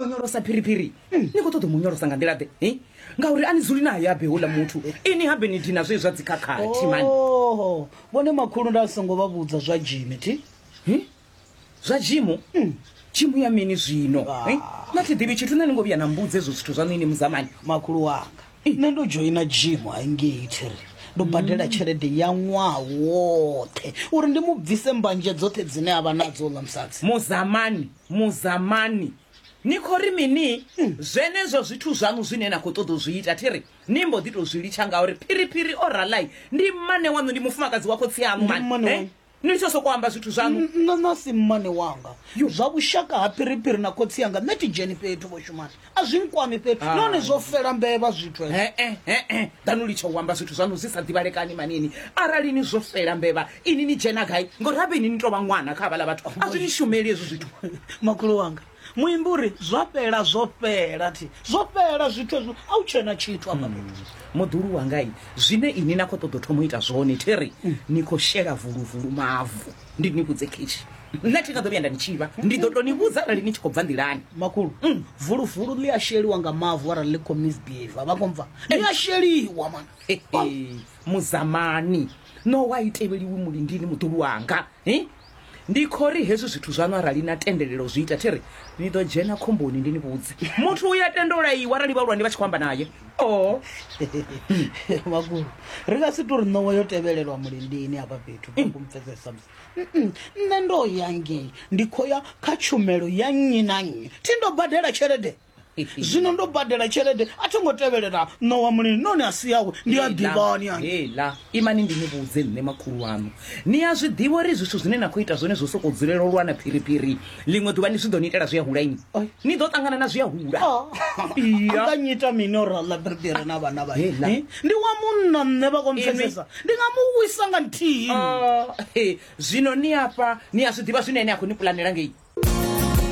onyolosa phiriphiri ni khou ṱoḓa u mu nyolosa nga nḓila ḓe eh? ngauri a ni dzuli naye abe houḽa muthu ini habe ni dina zwe zwa dzikhakhathi mani Oh, vhone makhulu nda songo vha vhudza zwa jimi thi Eh? zwa jimu jimu ya mini zwino Ah. eh? na thi ḓivhi tshithu na ni ngo vhuya na mbudza ezwo zwithu zwaṋu ini muzamani makhulu wanga nṋe ndo dzhoina jimu haingei thiri ndo badela tshelede ya ṅwaha woṱhe uri ndi mu bvise mbanje dzoṱhe dzine a vha nadzo ḽa musadzi muzamani Muzamani, ni khou ri mini? Zwenezwo zwithu zwaṋu zwine na khou ṱoḓa u zwi ita, thi ri ni mbo ḓi tou zwi litsha ngauri phiriphiri o ralai ndi mmane waṋu, ndi mufumakadzi wa khotsi aṋu Ndi mmane mani. waṋu. Eh? Ni litshe u sokou amba zwithu zwaṋu. Nṋe na si mmane wanga. Zwa vhushaka ha phiriphiri na khotsi anga, nṋe thi dzheni fhethu vho shumana. a zwi nkwami fhedzi Hai. nahone zwo fela mbevha zwithu hezwo. he-e he-e danu litsha u amba zwithu zwanu zwi sa ḓivhalekani manini arali ni zwo fela mbevha ini ni dzhena gai ngori habe ini ni tou vha ṅwana kha havhala vhathu a zwi ni shumeli hezwi zwithu makhulu wanga muimbi uri zwa fhela zwo fhela thi zwo fhela zwithu hezwo a u tshena tshithu afha fhethu. muḓulu wangai zwine ini na khou ṱoḓa u thoma u ita zwone theri ni khou shela vuluvulu mavu ndi ni vhudze khetshi nṋe thi nga ḓo vhuya nda ni tshivha ndi ḓo to ni vhudza arali ni tshi khou bva nḓilani makhulu mm. vulufulu ḽi a sheliwa nga mavu arali ḽi khou misbehave vha khou mva ḽi a sheliwa mana muzamani no wa i tevheliwi mulindini muḓulu wanga ndi khou ri hezwi zwithu zwaṋu arali na tendelelo zwi ita thi ri ni ḓo dzhena khomboni ndi ni vhudze muthu u ya tenda u laiwa arali vhahulwane vha tshi khou amba naye oh vhakulu ri nga si tori ṋowa yo tevhelelwa mulindini hafha fhethu kumupfesesa musi nṋe ndo ya ngei ndi khou ya kha tshumelo ya nnyi na nnyi thi ndo badela tshelede zwino ndo badela tshelede a tho ngo tevhelela ṋowa mulini noni a si yawe ndi a ḓivhani hela imani ndi ni vhudze nṋe makhulu wanu ni a zwi ḓivha uri zwithu zwine na khou ita zwone zwo sokou dzulela u lwana phiriphiri ḽiṅwe ḓuvha ni zwi ḓo ni itela zwi a hula ini ni ḓo ṱangana na zwi a hula nga nyita mini uri aḽa bebere na vhana vha ndi wa munna nṋe vha kompfesesa ndi nga mu wisa nga nthihi oh, zwino ni afha ni a zwi ḓivha zwine ene a khou ni pulanela ngei